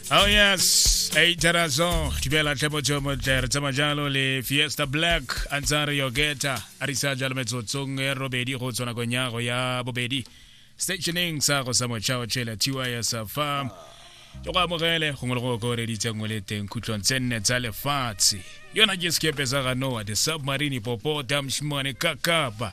Oh yes, hey Tarazo, Tibela Tebo Chomo Ter, Tsamajalo le Fiesta Black, Ansari Yogeta, Arisa Jalo Metsotsong, Robedi go tsona go nya go ya bobedi. Stationing sa go sa mochao chela tiwa ya sa farm. Yo go amogele go ngolo go go re ditse ngwe le teng khutlong tse nne tsa lefatshe. Yona ke sekepe sa ga Noah, the submarine popo, damshmane kakapa.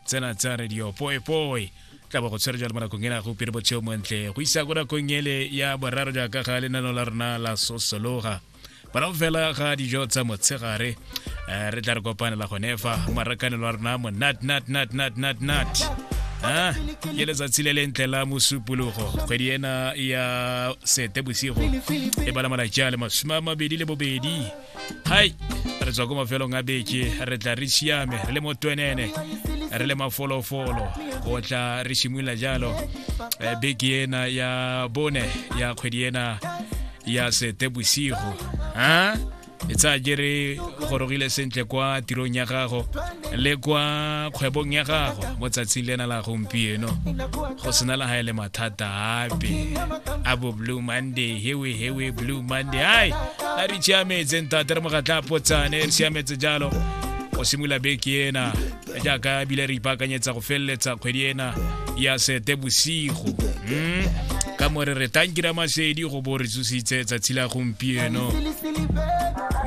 tsena tsa radio poepoe tla bo go tshwere jalo mo nakong ena go pele botsheo montle go isa ko nakong ele ya boraro jaaka ga lenano la rona la sosologa morago fela ga dijo tsa motshegare um re tla re kopanela gone fa marakanelo wa rona mo nat nat nat nat nat nat a ke letsatsi le lentle la mosupologo kgwedi ena ya sete bosigo e bala malatsi a le masome a mabedi le bobedi hai re tswa ko mafelong a beke re tla re siame re le mo twenene re le mafolofolo go tla re simolola jalo eh, beke ena ya bone ya kgwedi ena ya sete bosigo ha e tsaya jere gorogile sentle kwa tirong ya gago le kwa kgwebong ya gago mo tsatsing lena la gompieno go sena la gae le mathata ape a bo blue monday hewe hewe blue monday ai a re siametse ntate re mogatla potsane re siametse jalo go simolola beke ena jaaka ebile re ipaakanyetsa go feleletsa kgwedi ena ya sete bosigo mm. ka more re tankira masedi go bo re tsositse tsatsi la gompieno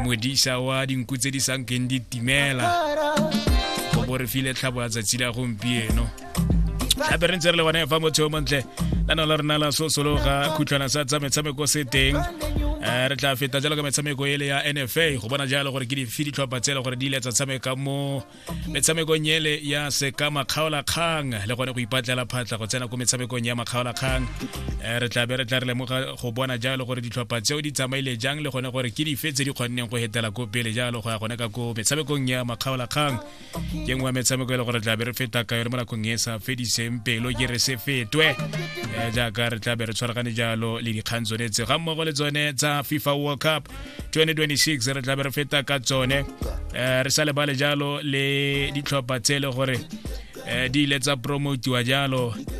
modisa wa dinku tse di sankeng di timela go bo re file tlhabo ya tsatsi la gompieno gape re ntse re le bone fa motho yo montle la no la rona la sosologa khutlhwana sa tsa metshameko se teng um re tla feta jalo ka metshameko ele ya nfa go bona jalo gore ke dife ditlhopha tse e le gore di ile tsa tshameka mo metshamekong ele ya seka makgaolakgang le gone go ipatlela phatla go tsena ko metshamekong ya makgaolakgang um re tla be re tla re lemoga go bona jalo gore ditlhopha tseo di tsamaile jang le gone gore ke dife tse di kgonneng go hetela ko pele jalo go ya gone ka ko metshamekong ya makgaolakgang ke nngwe ya metshameko e le gore tlabe re feta ka yone mo nakong e sa fediseng pelo ke re se fetwe eh, jaaka re tlabe re tshwaragane jalo le dikgang tsone tse ga mmogo le tsone tsa fifa world cup 2026 re tlabe re feta ka tsone eh, re sa lebale jalo le ditlhopha tse e le gore eh, di ile tsa promotiwa jalo